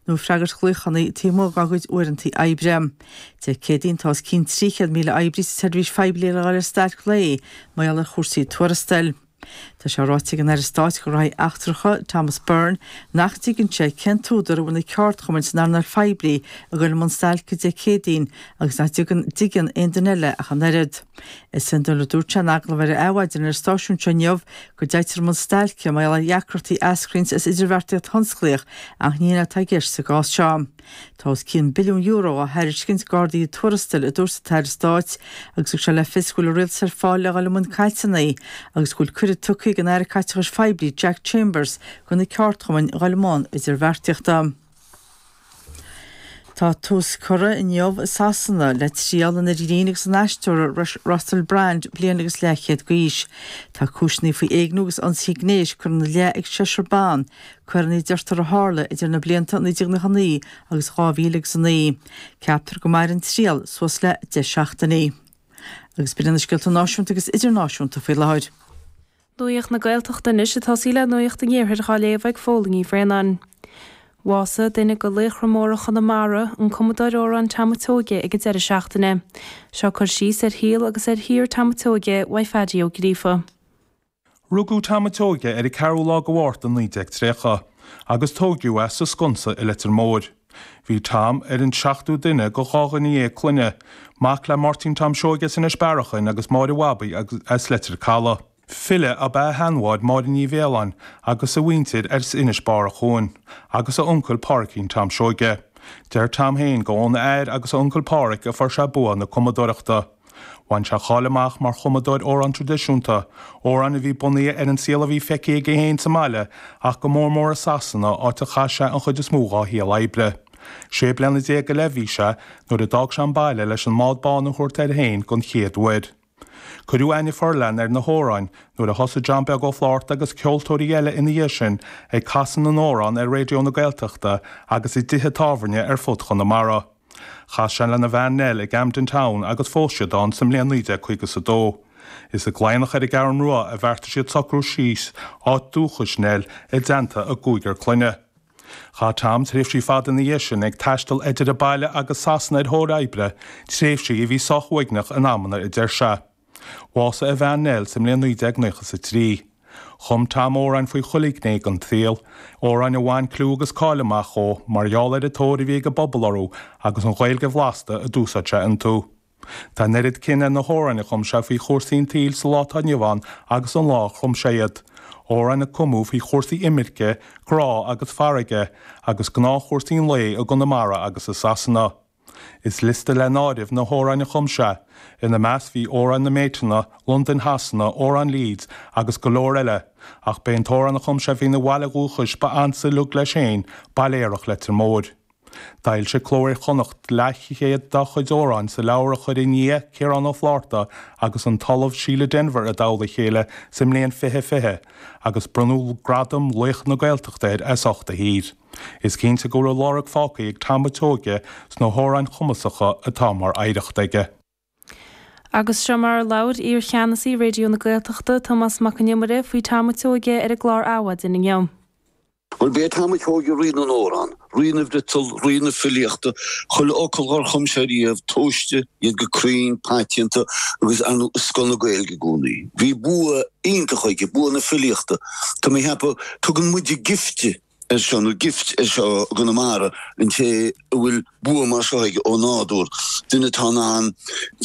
nó freagairt glaochanna taobh amuigh dá gcuid uaireantaí oibre. Dé Céadaoin, tá os cionn 300,000 oibrí sa tseirbhís phoiblí le dul ar stailc lae mar gheall ar chúrsaí tuarastail. Tá sé ráite ag an Aire Stáit do Ghraithí Eachtracha, Thomas Byrne, nach dtuigeann sé cén t-údar a bhfuil na ceardchumainn san earnáil phoiblí ag dul i mbun stailce Dé Céadaoin agus nach dtuigeann aon duine eile ach an oiread. Is iondúil, a dúirt sé in agallamh ar Adhmhaidin ar an stáisiún seo inniu, go dtéitear i mbun stailce mar gheall ar dheacrachtaí a eascraíonn as idirbheartaíocht thionsclaíoch ach ní hin atá i gceist sa gcás seo. Tá os cionn billiún euro á thairiscint d'arduithe tuarastail, a dúirt an tAire Stáit agus thug sé le fios go bhfuil an Rialtas ar fáil le dhul i mbun cainteanna agus go bhfuil cuireadh tugtha ag an Aire Caiteachais Phoiblí Jack Chambers do na ceardchumainn dhul i mbun idirbheartaíochta. Tá tús curtha inniu i Sasana le triail an fhir ghrinn agus an aisteora Russell Brand, bliain agus leathchéad d'aois. Tá cúiseanna faoi éigniú agus ionsaithe gnéis curtha ina leith ag seisear ban, coireanna a deirtear a tharla idir na blianta 1999 agus 2009. Ceaptar go mairfidh an triail suas le deich seachtainí. Agus b'in iad na scéalta náisiúnta agus idirnáisiúnta faoi láthair. Nuacht na Gaeltachta anois ag tosaí le Nuacht an Iarthair dhá léamh ag Fódhla Ní Bhraonáin. Bhásaigh duine de laochra móra Chonamara, an cumadóir amhrán Tom an tSeoige ag an deireadh seachtaine. Seo cur síos ar shaol agus ar shaothar Tom an tSeoige uaidh Phaddy Ó Gríofa. Rugadh Tom an tSeoige ar an 4ú lá de Mhárta 1930 agus tóigiadh é sa Sconsa i Leitir Móir. Bhí Tom ar an seachtú duine de dhá dhuine dhéag clainne, mac le Máirtín Tom Seoige as Inis Bearachain agus Máire Mhabaí as Leitir Caladh. File ab ea a sheanmháthair Máire Ní Mhaoláin agus a mhuintir as Inis Bearachain, agus a uncail Páiricín Tom Seoige. Deir Tom féin gurb óna athair agus a uncail Páraic a fuair sé bua na cumadóireachta. Bhain sé cáil amach mar chumadóir amhrán tradisiúnta, amhráin a bhí bunaithe ar an saol a bhí feicthe aige féin sa mbaile ach go mór mór i Sasana, áit a chaith sé an chuid is mó dhá shaol oibre. Sé bliana déag go leith a bhí sé nuair a d'fhág sé an baile leis an mbád bán a thabhairt air féin don chéad uair. Cuireadh aithne fhorleathan ar na hamhráin nuair a thosaigh John Beag Ó Flatharta agus ceoltóirí eile ina dhiaidh sin ag casadh na n-amhrán ar Raidió na Gaeltachta agus i dtithe tábhairne ar fud Chonamara. Chas sé lena bhean Nell i gCamden Town agus phós siad ann sa mbliain 1952. Is i gCladhnach ar an gCeathrú Rua a bheartaigh siad socrú síos, áit dúchais Nell, i dteannta a gcúigear clainne. Chaith Tom tréimhsí fada ina dhiaidh sin ag taisteal idir an baile agus Sasana ar thóir oibre, tréimhsí a bhí sách uaigneach in amanna, a deir sé. Bhásaigh a bhean Nell sa mbliain 1993. Chum Tom amhráin faoi chuile ghné den tsaol, amhráin a bhain clú agus cáil amach dhó mar gheall ar an tóir a bhí ag an bpobal orthu agus an Ghaeilge bhlasta a d'úsáid sé iontu. Tá an oiread cion ar na hamhráin a chum sé faoi chúrsaí an tsaoil sa lá atá inniu ann agus an lá a chum sé iad, amhráin a cumadh faoi chúrsaí imirce, grá agus farraige, agus gnáthchúrsaí an lae i gConamara agus i Sasana. Is liosta le n-áireamh na hamhráin a chum sé, ina measc bhí Amhrán na mBéiteanna, Londain Shasana, Amhrán Leeds agus go leor eile, ach b'é an t-amhrán a chum sé faoina bhaile dhúchais ba ansa uilig leis féin, Baile Aerach Leitir Móir. D'fhoilsigh Cló Iar-Chonnacht leathchéad dá chuid amhráin sa leabhar a chuir a nia, Ciarán Ó Flátharta, agus an tOllamh Síle Denvir i dtoll a chéile sa mbliain 2020, agus bronnadh gradam laoch na Gaeltachta air as ucht a shaothair. Is cinnte go raibh lorg fágtha ag Tom a' tSeoighe sna hamhráin chumasacha atá mar oidhreacht aige. Agus seo mar a labhair iar-Cheannasaí Raidió na Gaeltachta, Tomás Mac Con Iomaire, faoi Tom a' tSeoighe ar an gclár Adhmhaidin inniu. Bhuel, ba é Tom a' tSeoighe rí na n-amhrán, rí na bhfriotal, rí na filíochta, chuile fhocal dhár chum sé riamh, tomhaiste, iad go cruinn, paiteanta, agus ar ndóigh, i scoth na Gaeilge i gcónaí. Bhí bua iontach aige, bua na filíochta. Tá mé a cheapadh, tugann muide gifte ar seo, nó gift ar seo i gConamara, an té a bhfuil bua mar seo aige ó nádúr, duine atá in ann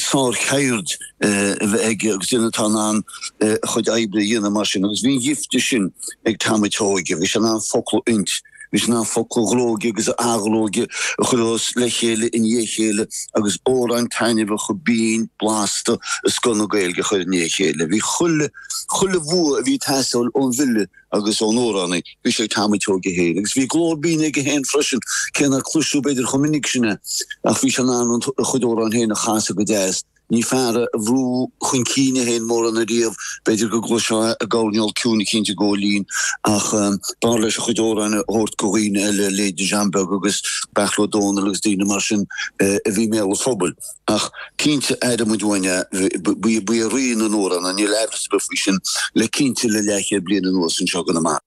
sárcheird a bheith aige agus duine atá in ann a chuid oibre a dhéanamh mar sin. Agus bhí an ghifte sin ag Tom a' tSeoighe, bhí sé in ann focla a fhuint, bhí sé in ann focla a ghróigeadh agus a athghróigeadh a chur os le chéile i ndiaidh a chéile agus amhráin taitneamhacha, binn, blasta, i scoth na Gaeilge a chur i ndiaidh a chéile. Bhí chuile, chuile bhua a bhí ag teastáil ón bhfile agus ón amhránaí, bhí sé ag Tom a' tSeoighe féin, agus bhí glór binn aige féin freisin, cé nár cloisteadh b'fhéidir chomh minic sin é, ach bhí sé in ann an, a chuid amhrán féin a chasadh go deas, ní fear é a bhrúigh chun cinn é féin mórán ariamh, b'fhéidir go gcloisfeá i gcoirnéal ciúin eicínt ag gabháil fhoinn, ach b'fhearr leis a chuid amhráin a thabhairt go dhaoine eile, leithéidí John Beag agus Beairtle Ó Domhnaill agus daoine mar sin a bhí i mbéal an phobail. Ach cinnte aireoidh muid uainn é, ba é rí na n-amhrán é, níl aimhreas ar bith faoi sin, le cinnte le leathchéad bliain anuas anseo i gConamara.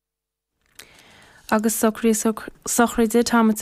Agus socruithe sochraide Tom a'.